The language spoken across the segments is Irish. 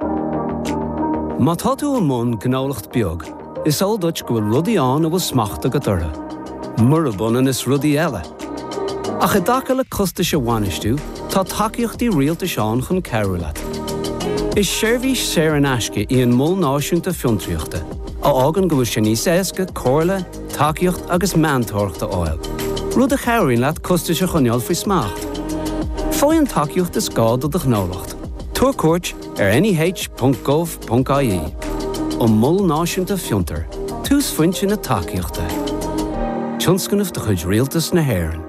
Má tá tú i mbun gnólacht beag, is eol duit go bhfuil rudaí ann a bhfuil smacht agat orthu, murab ionann is rudaí eile. Ach i dtaca le costais a bhainistiú, tá tacaíochtaí rialtais ann chun cabhrú leat. Is seirbhís saor in aisce í an Mol Náisiúnta Fiontraíochta, a fhágann go bhfuil sé níos éasca comhairle, tacaíocht agus meantóireacht a fháil, rud a chabhraíonn leat costais a choinneáil faoi smacht. Faigh an tacaíocht is gá do do ghnólacht. Tabhair cuairt ar neh.gov.ie an Mol Náisiúnta Fiontraíochta, túsphointe na tacaíochta. Tionscnamh de chuid Rialtas na hÉireann.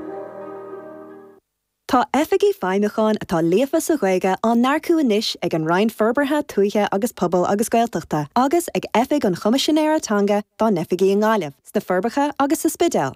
Tá Oifigigh Feidhmiúcháin atá líofa sa Ghaeilge á n-earcú anois ag an Roinn Forbartha Tuaithe agus Pobail agus Gaeltachta agus ag Oifig an Choimisinéara Teanga dá n-oifigí i nGaillimh, sna Forbacha agus sa Spidéal.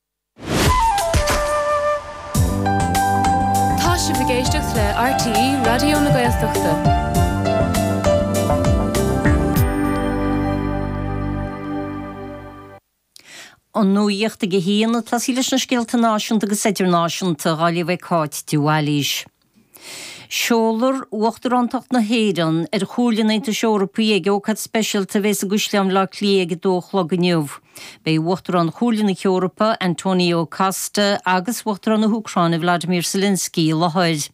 Tá sibh ag éisteacht le RTÉ Raidió na Gaeltachta. An nuacht ag a haon, tosóidh muid leis na scéalta náisiúnta agus idirnáisiúnta, á léamh ag Cáit de Bhailís. Seolfar Uachtaránacht na hÉireann ar Chomhairle an Aontais Eorpaigh ag ócáid speisialta a bheidh i gCaisleán Bhleá Cliath ag a dó a chlog inniu. Beidh Uachtarán Chomhairle na hEorpa, Antonio Costa, agus Uachtarán na hÚcráine, Vladimir Zelensky, i láthair.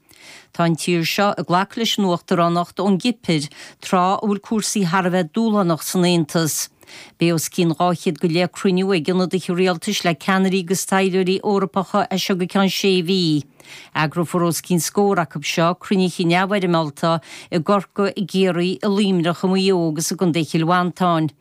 Tá an tír seo ag glacadh leis an uachtaránacht ón gCipir, tráth a bhfuil cúrsaí thar a bheith dúshlánach san Aontas. Beidh os cionn 200 go leith cruinniú ag ionadaithe rialtais le ceannairí agus taidhleoirí Eorpacha as seo go ceann sé mhí. Eagrófar os cionn scór acu seo, cruinnithe neamhfhoirmeálta i gCorcaigh, i gCiarraí, i Luimneach, i Maigh Eo agus i gcontae Chill Mhantáin.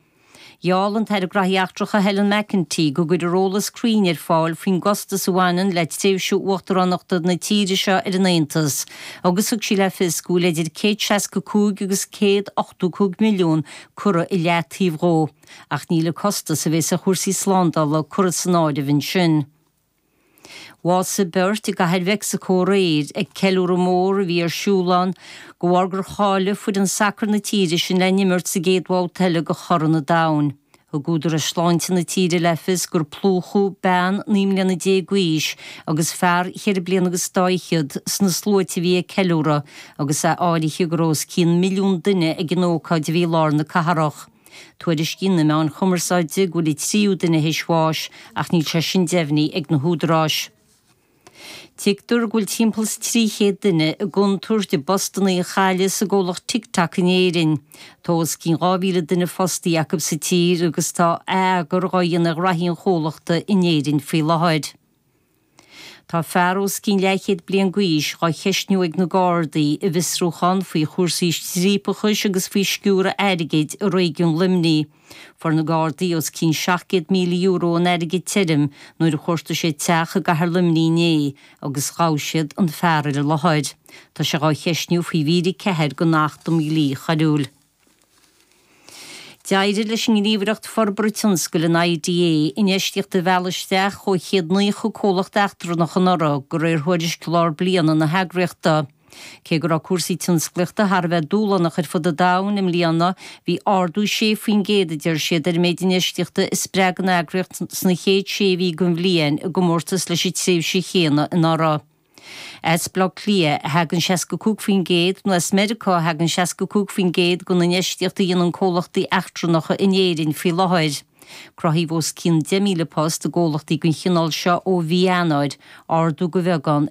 Gheall an tAire Gnóthaí Eachtracha Helen McEntee go gcuirfear eolas cruinn ar fáil faoin gcostas a bhaineann le tréimhse uachtaránachta na tíre seo ar an Aontas agus thug sí le fios go bhfuil idir 165 agus 185 milliún curtha i leataobh dhó, ach níl an costas a bheas ar chúrsaí slándála curtha san áireamh ansin. Bhásaigh beirt i gCathair Mheicsicó aréir ag ceiliúradh mór a bhí ar siúl ann de bharr gur cháiligh foireann sacair na tíre sin le n-imirt sa gcéad bhabhta eile de Chorn an Domhain. Thug údarais shláinte na tíre le fios gur plúchadh bean naoi mbliana déag d'aois agus fear cheithre bliana agus daichead sna sluaite a bhí ag ceiliúradh, agus áirítear go raibh os cionn milliún duine ag an ócáid a bhí i lár na cathrach. Tuairiscíonn na meáin chumarsáide go bhfuil an tríú duine théis bháis ach níl sé sin deimhnithe ag na húdaráis. Tuigtear go bhfuil timpeall is 300 duine i gcontúirt a bpostanna a chailleadh sa gcomhlacht TikTok in Éirinn. Tá os cionn 2,000 duine fostaí acu sa tír agus tá atheagar dhá dhéanamh ar ghnóthaí an chomhlachta in Éirinn faoi láthair. Tá fear os cionn leathchéad bliain d'aois á cheistiú ag na Gardaí i bhfiosrúchán faoi chúrsaí striapachais agus faoi sciúradh airgid i réigiún Luimnigh. Fuair na Gardaí os cionn €700,000 in airgead tirim nuair a chuartaigh siad teach i gcathair Luimnigh inné agus ghabh siad an fear ar an láthair. Tá sé á cheistiú faoi mhír 4 den Acht um Dhlí Coiriúil. D'éirigh leis an nGníomhaireacht Forbartha Tionscail, an IDA, infheistíocht a mhealladh isteach ó 190 comhlacht eachtrannach anuraidh, de réir thuairisc lár bliana na heagraíochta. Cé go raibh cúrsaí tionsclaíochta thar a bheith dúshlánach ar fud an domhain i mbliana, bhí ardú 6 faoin gcéad, a deir siad, ar an méid infheistíochta a spreag an eagraíocht sna chéad sé mhí den bhliain i gcomórtas leis an tréimhse chéanna anuraidh. As Baile Átha Cliath a thagann 65% nó as Meiriceá a thagann 65% den infheistíocht a dhéanann comhlachtaí eachtrannacha in Éirinn faoi láthair. Cruthaíodh os cionn 10,000 post i gcomhlachtaí den chineál seo ó mhí Eanáir, ardú de bheagán